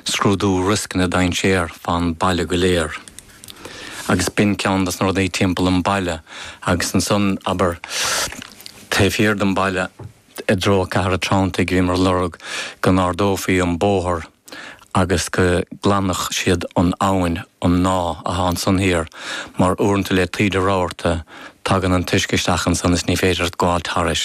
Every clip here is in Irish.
scrúdú rioscanna dainséar fán baile go léir agus b'in ceann dos na rudaí timpeall an baile agus ansan abair taobh thiar don baile i dtreo Cathair an Treantaigh bhíomar ag lorg go n-ardófaí an bóthar agus go nglanfadh siad an abhainn an mná athá ansan thiar mar uaireanta le taoide rabharta tagann an t-uisce isteach ansan is ní féidir leat gabháilt tharais.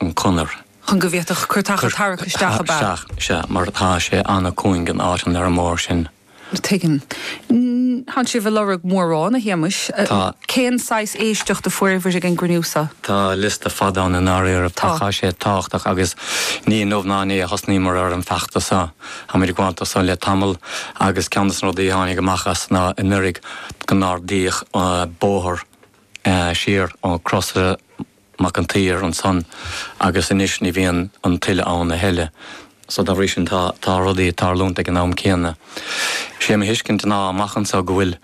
an conair. chun go bhféadfadh cairteacha tarrac isteach ab ea? Sea, mar tá sé an-chúng in áiteanna ar an mbóthar sin. Tuigim. Thánn sibh ag lorg mórán, a Shéamuis. Tá. Cén saghas éisteacht a fuaireabhair ag an gcruinniú so? Tá liosta fada ann i ndáiríribh. Tá. Tá sé tábhachtach agus ní inniu ná inné a thosnaíomar ar an feachtas so. Táimid ag gabháilt do so le tamall agus ceann de na rudaí a tháinig amach as ná anuraidh go n-ardaíodh bóthar siar ó Crois Mac an tSaoir ansan agus anois ní bhíonn an tuile ann a thuilleadh. So dá bhrí sin tá rudaí ag tarlúint ag an am céanna. Sé mo thuiscint ná amach anso go bhfuil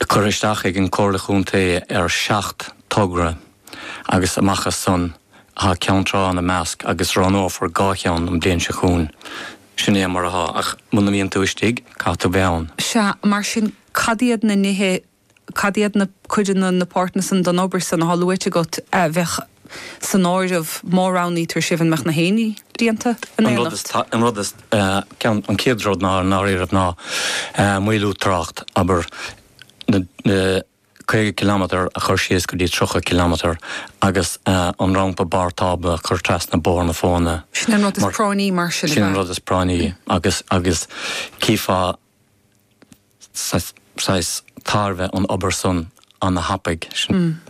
curtha isteach ag an gComhairle Chontae ar sheacht dtogra agus amach as san tá Ceann Trá ina measc agus roghnófar dhá cheann an bhliain seo chugainn. Sin é mar atá ach muna mbíonn tú istigh caithfidh tú bheith ann. Sea, mar sin cad iad na nithe cad iad na, cuid de na páirteanna san den obair san atá luaite agat a bheadh san áireamh má roghnaítear sibh, an mbeadh gach aon ní déanta in An rud is, éineacht? an rud is, ceann, an chéad rud ná, i ndáiríribh, ná maolú trácht, abair, na, na, caoga cilimeadar a chur síos go dtí tríocha cilimeadar agus an rampa barr tábla a chur trasna Bóthar na Fóna. Sin an rud is práinní mar sin, ab ea? Sin an rud is práinní agus, agus, chífeá, saghas tairbhe an obair san ana thapaidh sin.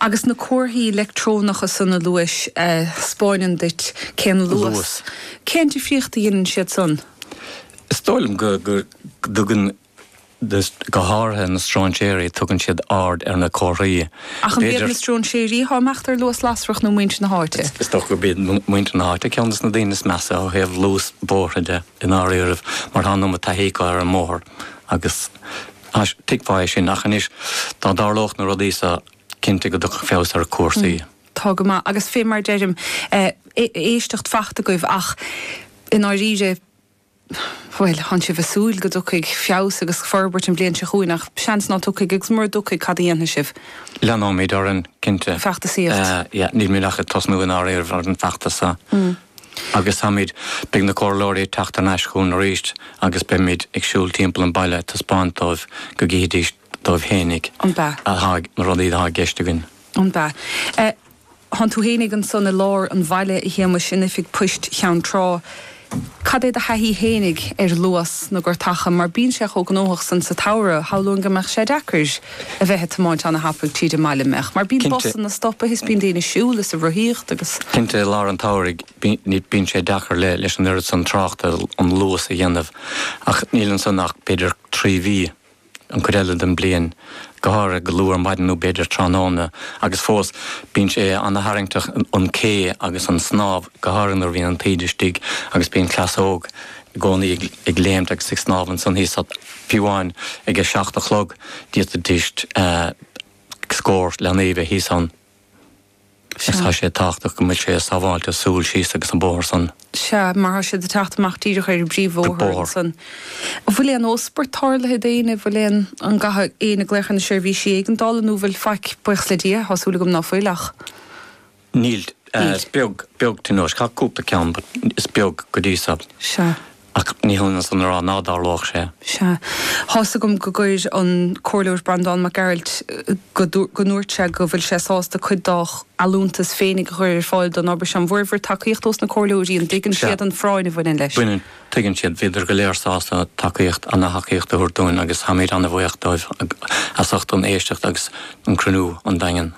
Agus na comharthaí leictreonacha san a luais a thspeáineann duit cén luas, cén difríocht a dheineann siad san? Is dóigh liom go dtugann, go háirithe na stróinséirí, tugann siad aird ar na comharthaí. Ach an b'iad na stróinséirí atá ag imeacht ar luas lasrach nó muintir na háite? Is dócha gurb iad muintir na háite ceann des na daoine is measa ó thaobh luas bóithre de. i ndáiríribh, mar tá an iomad taithí acu ar an mbóthar agus thuigfeá é sin, ach anois, dá dtarlódh na rudaí so, cinnte go dtiocfadh feabhas ar chúrsaí. Tá go maith, agus fé mar deirim, éisteacht fachta agaibh, ach i ndáiríre, bhuel, thánn sibh ag súil go dtiocfaidh feabhas agus forbairt an bhliain seo chugainn, ach seans ná tiocfaidh, agus mura dtiocfaidh, cad a dhéanfaidh sibh? Leanóimid orainn, cinnte. Feachtasaíocht. Yeah, nílimid ach ag tosnú i ndáiríribh ar an bhfeachtas so. Agus táimid, beidh na Comhairleoirí ag teacht thar n-ais chugainn arís agus beimid ag siúl timpeall an bhaile ag taispeáint dóibh go gcífidís dóibh fhéinig Ambaist. atá ag, na rudaí atá i gceist againn. Ambaist. Thánn tú fhéinig ansan i lár an bhaile, a Shéamais, in oifig poist Cheann Trá. Cad é do thaithí fhéinig ar luas na gcairteacha, mar bíonn sé chomh gnóthach ansan sa tsamhradh, shamhlóinn go mbeadh sé deacair? a bheith ag tiomáint an-thapaidh tríd an mbaile, an mbeadh, mar bíonn Cinnte. busanna stoptha is bíonn daoine ag siúl is ag rothaíocht agus. cinnte i lár an tsamhraidh bíonn, bíonn sé deacair le, leis an oiread san tráchta an luas a dhéanamh ach níl ansan ach b'fhéidir trí mhí an cuid eile den bliain, go háirithe go luath ar maidin nó b'fhéidir tráthnóna agus fós bíonn sé an-tharraingteach an cé agus an snámh go háirithe nuair a bhíonn an taoide istigh agus bíonn cleas óg i gcónaí ag léimt agus ag snámh ansan thíos, d'fhéadfadh, fiú amháin ag a seacht a chlog d'fhéadfadh thuas le scór leanaí a bheith thíos ann. Agus tá sé tábhachtach go mbeidh sé sábháilte siúl síos agus an bóthar san. Sea, mar tá siad ag teacht amach díreach ar an bpríomh-bhóthar ansan. An bhfuil aon óspairt tarlaithe d'éinne, an bhfuil aon, an gcaitheadh éinne glaoch ar na seirbhísí éigeandála nó an bhfuil faic, buíochas le Dia, tá súil agam ná fuil ach. Níl. Is beag, beag tionóisc. Tá cúpla ceann but is beag go dtí so. Sea. Ach ní hionann san a rá ná dtarlódh sé. Sea. Thá's agam go gcuir an Comhairleoir Breandán Mac Gearailt go, go ndúirt sé go bhfuil sé sásta cuid dá allúntas féinig a chur ar fáil don obair seo. An bhfuaireabhair tacaíocht ós na Comhairleoirí? An dtuigeann Sea. siad an phráinn a bhaineann leis? Tuigeann siad. Bhíodar go léir sásta tacaíocht, ana thacaíocht a thabhairt dúinn agus táimid ana bhuíoch dóibh as ucht an éisteacht agus an cruinniú sa Daingean.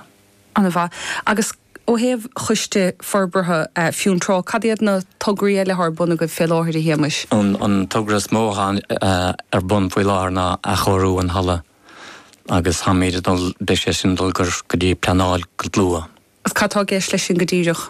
An-mhaith. Agus ó thaobh Choiste Forbartha Fionntrá, cad iad na tograí eile atá ar bun agaibh fé láthair, a Shéamais? An togra is mó atá ar bun faoi láthair ná athchóiriú an halla agus táimid ag dul, beidh sé sin ag dul go dtí pleanáil go luath. Agus cad atá i gceist leis sin go díreach?